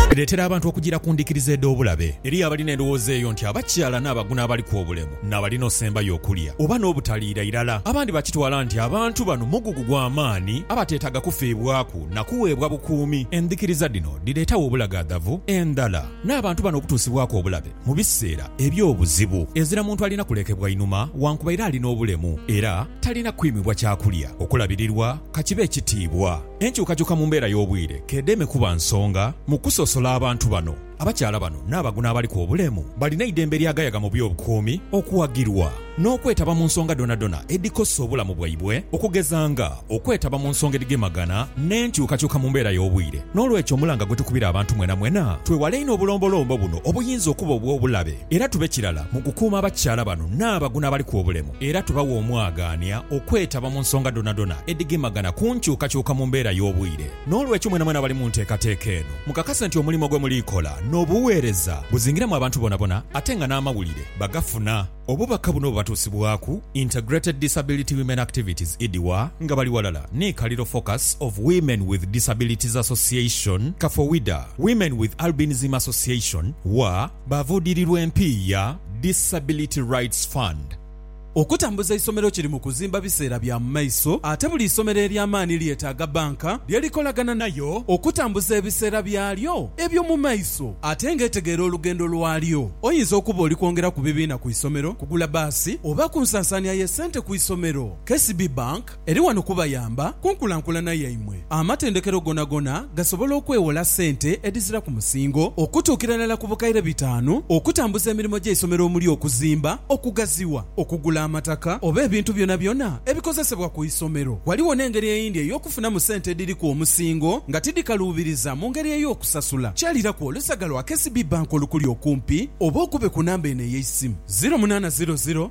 Bireetera abantu okujiira ku ndhikiriza edh'obulabe. Eriyo abalina endhowooza eyo nti abakyala n'abagu n'abaliku obulemu n'abalina osembayo okulya oba n'obutaliira irala. Abandi bakitwala nti abantu bano mugugu gwa maani abateetaaga kufiibwaku na kuweebwa bukuumi. Endhikiriza dhino dhireetawo obulagaadhavu endhala n'abantu bano okutuusibwaku obulabe mu biseera eby'obuzibu. Ezira muntu alina kulekebwa inhuma wankubaire alina obulemu era talina kwimibwa kyakulya, okulabirirwa ka kibe ekitiibwa. Enkyukakyuka mu mbeera y'obwire k'edeme kuba nsonga mu kusosola abantu bano. Abakyala bano n'abago n'abaliku obulemu balina eidembe lyagayaga mu by'obukuumi okuwagirwa n'okwetaba mu nsonga dhonadhona edhikosa obulamu bwaibwe okugeza nga okwetaba mu nsonga edhigemagana n'enkyukakyuka mu mbeera y'obwire. N'olwekyo omulanga gwetukubira abantu mwenamwena twewale inho obulombolombo buno obuyinza okuba obw'obulabe. Era tube kirala mu kukuuma abakyala bano n'abaguna abaliku obulemu era tubawe omwagaania okwetaba mu nsonga dhonadhona edhigemagana ku nkyukakyuka mu mbeera y'obwire. N'olwekyo mwenamwena abali mu nteekateeka eno mukakase nti omulimo gwe muliikola n'obuweereza buzingiramu abantu bonabona ate nga n'amawulire bagafuna. Obubaka buno bubatuusibwaku Integrated Disability Women Activities, IDWA, nga bali ghalala ni Kaliro Focus of Women with Disabilities Association, Kafowida, Women with Albinism Association, wa, Baavuudirirwa empiiya, Disability Rights Fund, okutambuza eisomero kiri mu kuzimba biseera bya mu maiso ate buli isomero ery'amaani lyetaaga banka lye likolagana nayo okutambuza ebiseera byalyo eby'omu maiso ate ng'etegeera olugendo lwalyo. Oyinza okuba oli kwongera ku bibiina ku isomero, kugula baasi oba ku nsansaania y'essente ku isomero. KCB Bank. Eri wano kubayamba ku nkulankulana yaimwe. Amatendekero gonagona gasobola okwewola sente edhizira ku musingo okutuukira irala ku bukaire bitaanu okutambuza emirimo gy'eisomero omuli okuzimba, okugaziwa, okugula amataka oba ebintu byonabyona ebikozesebwa ku isomero. Ghaligho n'engeri eyindi ey'okufunamu sente edhiriku omusingo nga tidhikaluubiriza mu ngeri ey'okusasula. Kyaliraku olusaga lwa KCB Bank olukuli okumpi oba okube ku namba eno ey'eisimu, ziro munaana ziro ziro,